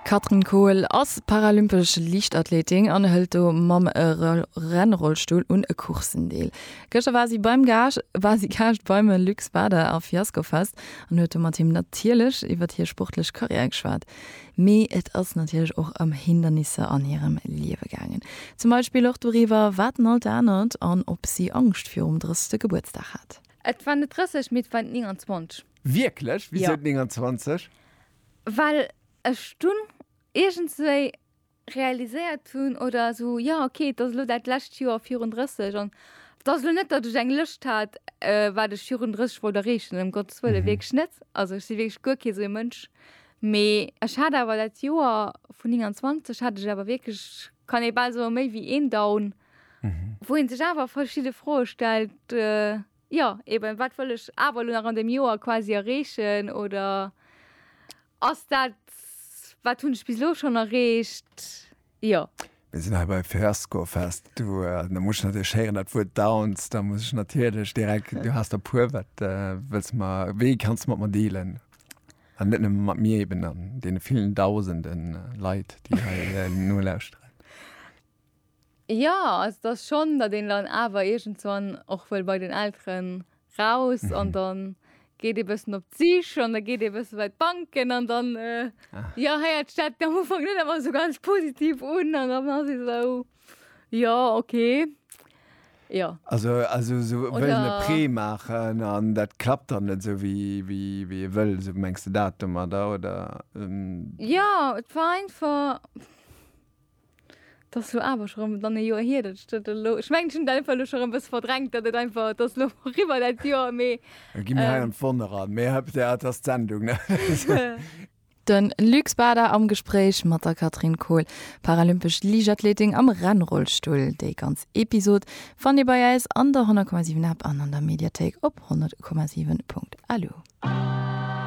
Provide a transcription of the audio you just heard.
D'Katrin Kohl ass paralympesch Liichtathleetin an hëlt do mam Rennrollstull un e Courssen deel. Gëschter war si beim Gage war si Gaascht beim Luc Bader a Fiascofest an huet do mat him natierlech iwwert hir sportlech Karriär geschwat. Mee et ass natierlech och ëm Hindernisser an hirem Liewe gaangen. Zum Beispill och doriwwer, wat en alt anert an ob si Angscht virum 30. Gebuertsdag hat. Et waren net 30, mee et waren 29. Wierklech? Wisou Ja. 29? Well ech dunn iergendswéi realiséiert hunn, oder esou, jo ok, et ass elo dat lescht Joer virun 30 an et ass elo net, datt ech eng Lëscht hat, wat ech virun 30 wollt erreechen, ëm Gottes Wëlle, wierklech net. Also ech si wierklech guer kee sou ee Mënsch. Mee ech hat awer dat Joer vun 29 hat ech awer wierklech, kann ee bal soen, méi wéi een Down, wou ee sech awer verschidde Froe stellt, Jo, eben, wat wëll ech awer elo nach an deem Joer quasi erreechen oder ass dat, wat hunn ech bis elo schonn erreecht? Jo. Mir sinn hei bei Fiasco Fest. Du, da muss ech natierlech héieren, dat Wuert Downs, da muss ech natierlech direkt, du has der puer, wat wëlls de mer, wéi kanns de mat mer dealen? An net nëmme mat mir eben, an deene villen Dausende Leit, déi hei nolauschteren. Jo, also et ass schonn, datt een dann awer iergendswann och wëll bei den Elteren raus an dann geet ee bëssen op d'Sich an da geet ee bësse bei d'Banken an dann, jo, héiert sech dat am Ufank net ëmmer esou ganz positiv un an dann ass ee esou, jo, okay, jo. Also esou wëllen e Prêt maachen an dat klappt dann net esou wéi ee wëll, esou mengs de dat domadder, oder? Jo, et war einfach. 't ass lo awer scho rem dann e Joer hier dat ech dat elo, ech mengen ech hun dat einfach elo scho rem bessen verdrängt dat et einfach, 't ass lo riwwer dat Joer mee Elo gi mir hei an d'Wonne ran, mee hei op der, 't ass d'Sendung ne. De Luc Bader am Gespréich mat der Catherine Kohl, paralympesch Liichtathletin am Rennrollstull. Déi ganz Episod fannt Dir bei äis an der 100,7 App an an der Mediathéik op 100,7.lu.